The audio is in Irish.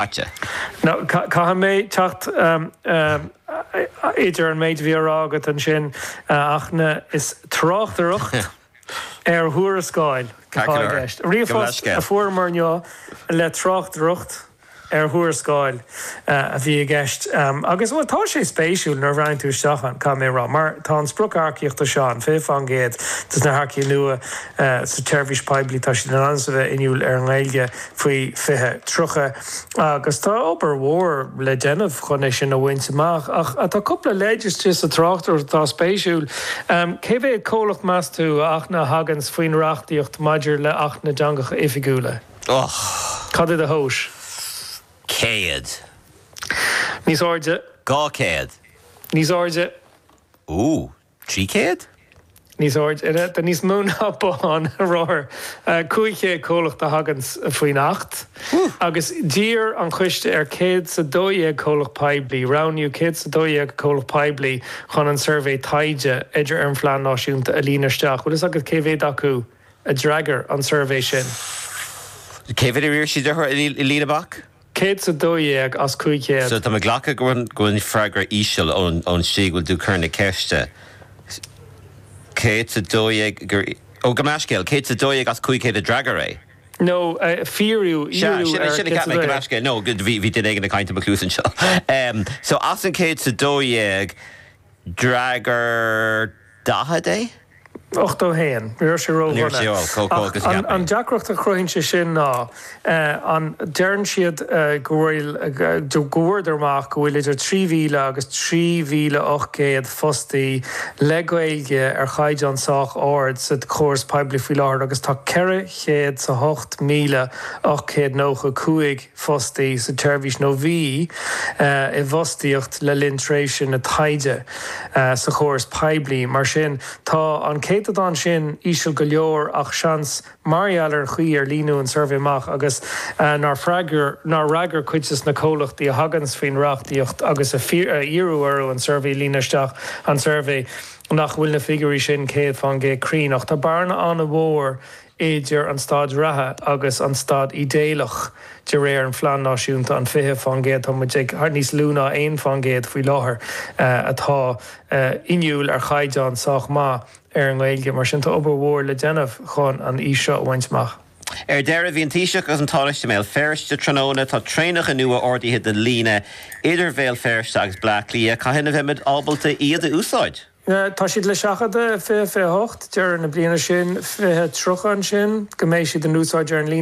caite. Now, caithfidh mé teacht idir an méid a bhí á rá agat ansin ach na, is tráchtaireacht ar thuarascáil atá i gceist. Ríomhphost a fuaireamar inniu le tráchtaireacht ar thuarascáil a bhí i gceist agus, bhuel, tá sé spéisiúil nuair a bhreathnaíonn tú isteach ann, caithfidh mé a rá, mar tá an sprioc earcaíochta seo ann, 20% de na hearcaigh nua sa tseirbhís poiblí, tá siad in ainm is a bheith inniúil ar an nGaeilge. faoi 2030 agus tá obair mhór le déanamh chun é sin a bhaint amach ach tá cúpla leid istigh sa tráchtaireacht atá spéisiúil. Cé mhéad comhlacht meas tú a thaganns faoin reachtaíocht maidir le Acht na dTeangacha Oifigiúla? Och! Cad é do thomhais? Céad. Níos airde? Dhá chéad. Níos airde? Ooh, trí chéad? níos airde, de níos mó ná bothán rothar cúig chéad comhlacht a thaganns faoin Acht agus d'iarr an Coiste ar chéad 's a dó dhéag comhlacht poiblí, roghnaíodh céad 's a dó dhéag comhlacht poiblí chun an suirbhé taighde idir ar an Phlean Náisiúnta a líonadh isteach. Bhfuil fhios agat cé mhéad acu a d'fhreagair an suirbhé sin? Cé mhéad a d'iarr siad orthu a líonadh amach? Céad sa dó dhéag as cúig chéad. So tá mé ag glacadh go mbeidh an freagra íseal ón slí go bhfuil tú cur na ceiste. Céad sa dó dhéag gur, ó, gabh mo leithscéal, céad sa dó dhéag as cúig chéad a d'fhreagair é. No, fiafraíodh, fiafraíodh ar céad sa dó dhéag. Sea, sin a cheap mé, gabh mo leithscéal, no, bhí duine éigin ag caint i mo chluas anseo. So as an céad sa dó dhéag, D'fhreagair daichead é. Ochtó a haon. Ní raibh sé Ní raibh sé ró-dhona. ró, chomh, chomh, Ach agus a an, cheap mé. an deacracht a chruthaíonn sé sin ná, an, deireann siad go bhfuil, go bhfuaireadar amach go bhfuil idir trí mhíle agus trí mhíle ocht gcéad fostaí le Gaeilge ar chaighdeán sách ard sa chóras poiblí faoi láthair agus tá ceithre chéad 's a hocht míle ocht gcéad nócha cúig fostaí sa tseirbhís nó bhí i bhfostaíocht le linn tréimhse na taighde sa chóras poiblí. Mar sin, tá an céatadán sin íseal go leor ach seans mar gheall ar an chaoi ar líonadh an suirbhé amach agus nár fhreagair cuid de na comhlachtaí a thaganns faoin reachtaíocht agus a iarradh orthu an suirbhé a líonadh isteach an tsuirbhé nach bhfuil na figiúirí sin 100% cruinn ach tá bearna an-mhór i idir an staid reatha agus an staid idéalach de réir an Phlean Náisiúnta, an 20%, tá muid ag níos lú ná 1% faoi láthair, atá inniúil ar chaighdeán sách maith ar an nGaeilge. Mar sin, tá obair mhór le déanamh chun an fhís seo a bhaint amach. Ar deireadh, bhí an Taoiseach agus an Tánaiste i mBéal Feirste tráthnóna. Tá traenacha nua ordaithe don líne idir Bhéal Feirste agus Bleá Cliath. Cathain a bheimid ábalta iad a úsáid? Tá siad le seachadadh i fiche fiche a hocht deireadh na bliana sin, fiche tríocha ansin, go mbeidh siad in úsáid ar an líne.